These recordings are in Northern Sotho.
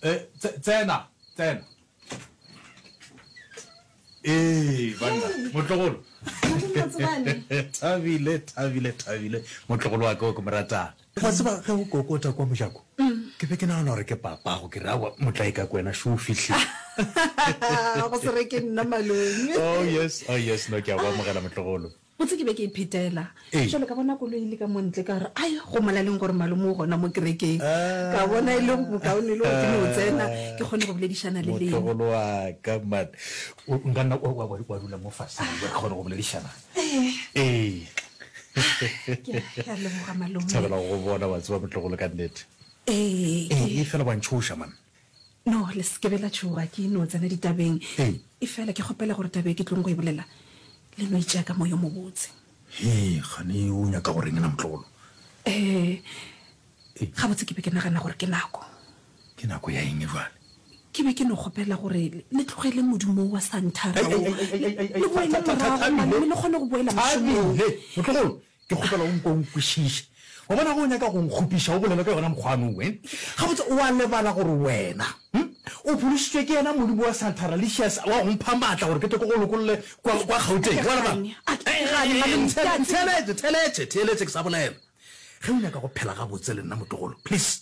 Eh, tsena tsena ee banna motlogolo thabile thabile thabile motlogolo wa koko moratang wa tseba ge o kokota kwa mojako ke be ke nagana gore ke papago ke rawa motlae ka kwena sho o fitlhe go se re ke nna malone oh yes oh yes no ke a go amogela motlogolo Botse ke be ke iphetela šole ka bona koloi e le ka mo ntle ka gore ai go molaleng gore malome o gona mo kerekeng ka bona e le bokaone le gore ke no tsena ke kgone go boledišana le lena. Motlogolo wa ka man o nka nna wa dula mo faseng re kgone go boledišana. Ee. Ke a leboga malome. Thabela go go bona wa tseba motlogolo ka nnete. Ee. Ee fela wa ntšhoša man. No, le se ke be la tšhoga ke no tsena ditabeng. Ee. Efela ke kgopela gore taba e ke tlong go e bolela le no e tšea ka moya o mobotse. Hee, kgane o nyaka go reng na, motlogolo? Ee, gabotse ke be ke nagana gore ke nako. Ke nako ya eng bjale? Ke be ke no kgopela gore le tlogele modumo wo wa santhara wo, le boele morago mane mme le kgone go boela mošomong. Thabile! Motlogolo, Ke kgopela o nkwe o nkwešiše. Wa bona, ge o nyaka go nkgopiša, o bolele ka yona mokgwano wo. Gabotse, o a lebala gore wena o phološitšwe ke yena Modimo wa Santa Ralicious wa go mpha maatla gore ke tle ke go lokolle kwa Gauteng? Wa lebala? Ntheeletše, theeletše, theeletše ke sa bolela. Ge o nyaka go phela gabotse le nna, motlogolo, please.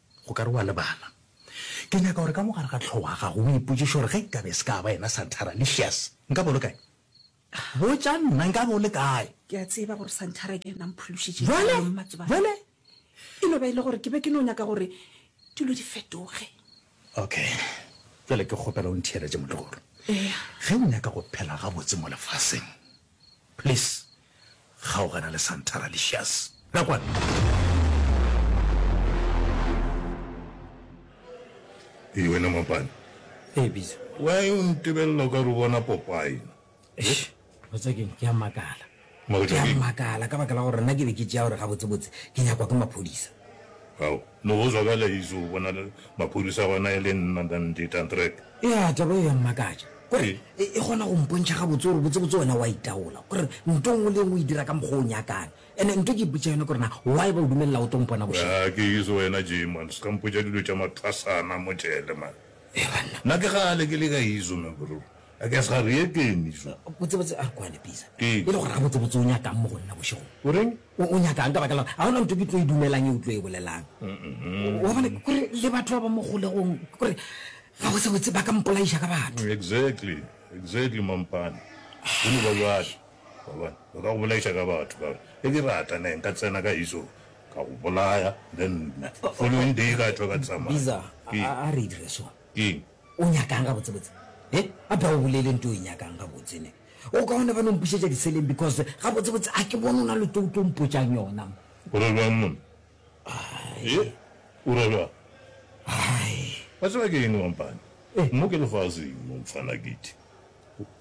O ka re o a lebala. Ke nyaka gore ka mo gare ga tlhogo ga gago o ipotšiše gore ge nkabe e se ka ba yena Santhara, Licious, nkabe o le kae? Botša nna, nkabe o le kae? Ke a tseba gore Santhara ke yena a mphološitšeng Bjale, kgaolong, Mmatšobane. bjale. E no ba e le gore ke be ke no nyaka gore dilo di fetoge. Okay. Bjale ke kgopela o ntheeletše motlogolo. Eya. Ge o nyaka go phela gabotse mo lefaseng, please, Kgaogana le Santara Licious. Nakwana. Ee, wena Mapane. Ee, Pitso. Why o ntebelela o ka re o bona Popeye? Eish, o tswa keng? Ke a makala. Ke a makala ka baka la gore nna ke be ke tšea gore gabotsebotse ke nyakwa ke maphodisa. Ao. Le go zwa ka leizo o bona maphodisa gona e le nna than di tantrek. Ya taba e ya mmakatša gore e e kgona go mpontšha gabotse gore botsebotse wena wa itaola gore nto ngwe le engwe e dira ka mokgwa o nyakang ene nto ke ipotša yone gore na why ba o dumelela o tlo mpona bošego. Ya ke izo wena Jay man ska mpotša dilo tša mathwasana mo jele man. Ee banna. Nna ke kgale ke le ka izo man bro I guess ga re ye keng izo. Botsebotse a re kwane Pisa e le gore gabotsebotse o nyakang mo go nna bošegong. O reng? O, o nyaka'ng ka baka la gore ga gona ntho ke tlo e dumelang e o tlo e bolelang? Wa bona, ke gore le batho ba ba mo kgolegong, ke gore ga go sebotse ba ka mpolaiša ka batho. Exactly, exactly, mampane. Go no ba bjalo. Wa bona, ba ka go bolaiša ka batho, ka gore ge ke rata ne nka tsena ka iso ka go bolaya, then following day ka tšwa ka tsamaya. Biza, Ke, a, a re e dire so. keng? O nyaka'ng gabotsebotse? He? Gape ga o bolele nto o e nyaka'ng gabotse ne? O kaone gane o mpušetša diseleng because gabotsebotse ga ke bone o na le to o tlo mpotša'ng yona. O ra bjang monna? He? O ra bjang? Hai. Wa tseba ke eng mampane? Mo ke lefaseng mo mfana Giti.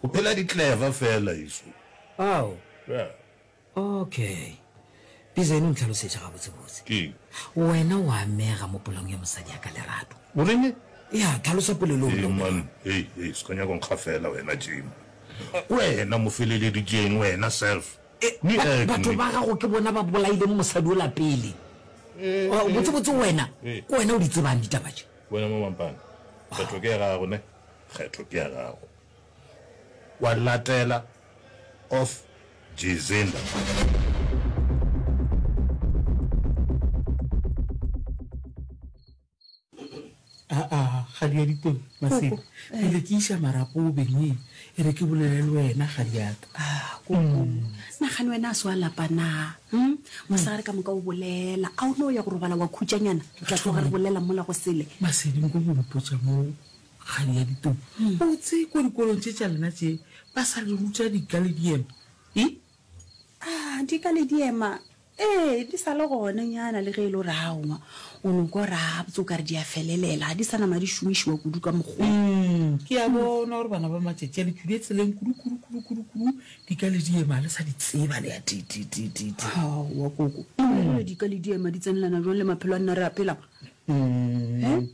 Go phela di clever feela eso. Ao. Yeah. Ok. Pizene o ntlhalosetša gabotsebotse. Eng? Wena o amega mo polong ya mosadi ya ka Lerato. O reng? Ya, tlhalosa polelo Ee, man. Hei, hei, se ka nyaka go nkgafela wena, Jim. Wena mofeleleditšeng, wena, self. Ni eg, ni. Batho ba gago ke bona ba bolaileng mosadi ola pele. Botsebotse wena, ke wena o di tsebang ditaba tše. Wena, Mamampane, kgetho ke ya gago, ne? Kgetho ke ya gago. Wa latela of December. kgadi ya ditong masedi pele ke iša marapo o bengwe e re ke bolele le wena kgadi yaka ah, mm. nagane wena a se wa lapa na hmm? mosagare ka moka o bolela a o ne o ya go robala wa khutšanyana ka tloga re bolela mola go sele masedi nko go mpotsa moo Kgadi ya Ditumi, o tsee kua dikolong tše tša lena tše ba sa le ruta Dikalediema? I. A, Dikalediema, ee, di sa le gona nyana le ge e le gore aowa, o no kwa gabotse o ka re di a felelela, ga di sa nama di šomišiwa kudu ka mokgwa. Umm, ke a bona gore bana ba matšatši a le tšwile tseleng kudu, kudu, kudu, kudu, kudu, Dikalediema ga le sa di tseba le a ti, ti, ti, ti, ti. Aowa, Koko, e le gore Dikalediema di tsenelana bjang le maphelo a nna re a phelang? Umm,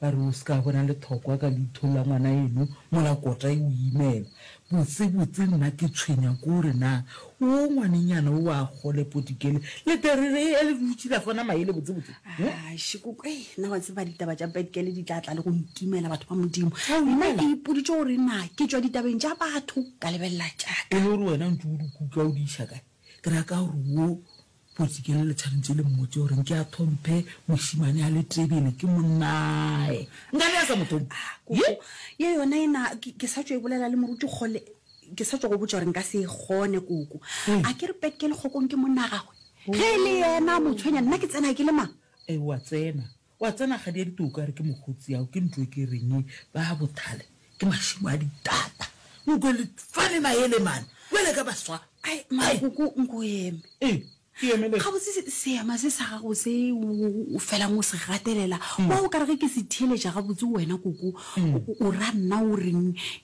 Ba re o se ka bona lethokwa ka leitho la ngwanaeno mola kota e o imela. Botsebotse nna ke tshwenya ke gore na woo ngwanenyana o a kgole potikele le terere e le dutše la fona maele botsebotse. Shikoko, ei, nna wa tseba ditaba tša petikele di tla tla le go ntumela batho ba Modimo. Nna ke ipoditše gore na ke tšwa ditabeng tša batho ka lebelela tša ka. E le gore wena o ntše o di kutla o di iša kae? Ke ra ka gore wo Kgoši, ke le le tshwanetse le mmotse gore nke a thomphe mošimane a le tebele ke monnae. Nka be a sa mo thomphe. Koko, ye yona ena ke sa tšo e bolela le moruti kgole, ke sa tšo go botša gore nka se e kgone koko. A ke re Petke lekgokong ke monna gagwe? Ge e le yena a mo tshwenya nna ke tsena ke le mang? Ewa tsena. Wa tsena kgadi ya ditoka re ke mokgotsi ao ke ntwe ke reng ba ha bothale ke mashimo a ditata o kwe le fane maele mane kwele ka baswa ai makoko nko eme e ke eme le ga botse se ema se sa gago se o felang o se gatelela wa o ka re ke se theletša ga botse wena koko o ra nna o reng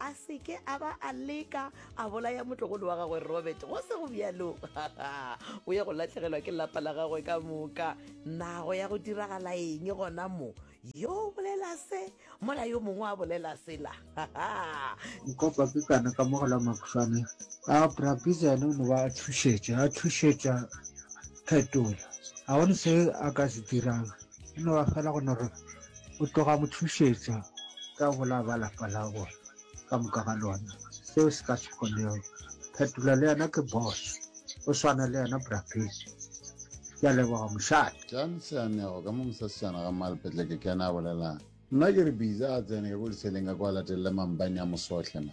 a se ke a ba a leka a bolaya motlogolo wa gagwe robert go se go bjalo o ya go latlhegelwa ke lapa la gagwe ka moka nago ya go diragala eng gona mo yo o bolela se mola yo mongwe a bolela sela nkopa ke kana ka mogela makgwane a brabisa ene o ne ba a thušetša a thušetša phetola ga gone se a ka se dirang e no ba fela go no re o tloga mo thušetša ka bola ba lapa la bona ka moka ga lona seo se ka se kgonego phetola le yena ke boss o swana le yena brapedi ke a leboga mošate jan seanego ka mo mosasejana ga malepetle ke kena a bolelang nna ke re biza a tsene ka ko leseleng ka kwa latelele mampane a mosohle ma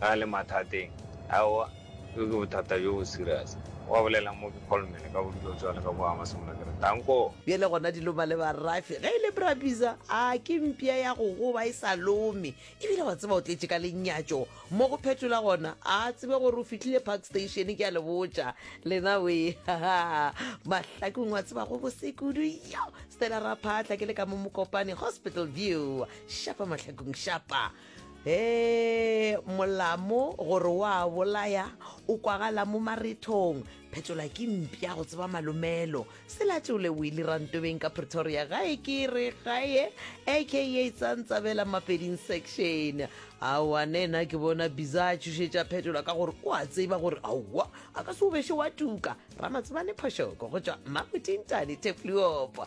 A le mathateng? Aowa, bjo ke bothata bjo bo serious. Wa bolela mo ke kholmele ka bodulo bjale ka boa masomola ke re, Tanko! Bjale gona dilo mma le ba Rafi ge e le Brabizza, a ke mpša ya go goba e sa lome. E bile wa tseba o tletše ka lenyatšo mo go phetola gona, a tsebe gore o fihlile Park Station ke a le botša lena wee. Ha-ha, Mahlakong wa tseba go bose kudu yo! Stella Raphahla ke le ka mo Mokopane Hospital View. Shapa Mahlakong, shapa! Hee, molamo gore o a bolaya o kwagala mo marethong. Phetola ke mpša go tseba malomelo. Selatšole o ile rantobeng ka Pretoria gae ke re gae aka Tsantsabela Mapeding section. Aowa nena ke bona Biza a tšhošetša Phetola ka gore o a tseba gore aowa a ka se o beše wa tuka. Ramatsebane Phošoko go tšwa Mmamotintane Thepluopo.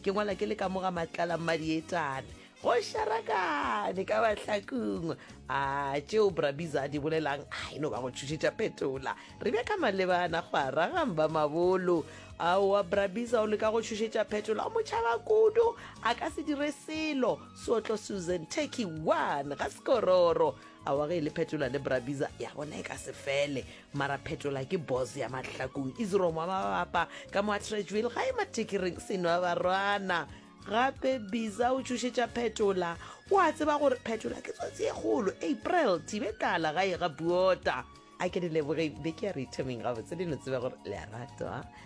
ke ngwala ke le ka moga matlala mmadietane go sharakane ka bahlakung a tšeo brabiza a di bolelang a e no ba go tšhošetša phetola re bja ka malebana go aragang ba mabolo aowa brabiza o leka go tšhošetša phetola o motšhaba kudu a ka se dire selo sootlo susan turkey one ga sekororo awa ge e le phetola le brabiza ya bona e ka se fele mara phetola ke boss ya mahlakong isromo wa mabapa ka mo a trejuel ga e matekereng seno wa barwana gape biza o tšhošetša phetola o a tseba gore phetola ke tsotsi e kgolo april thibe tlala ga e ga buota a ke di leboge be ke ya re ithameng gabotse le no tseba gore le a ratwa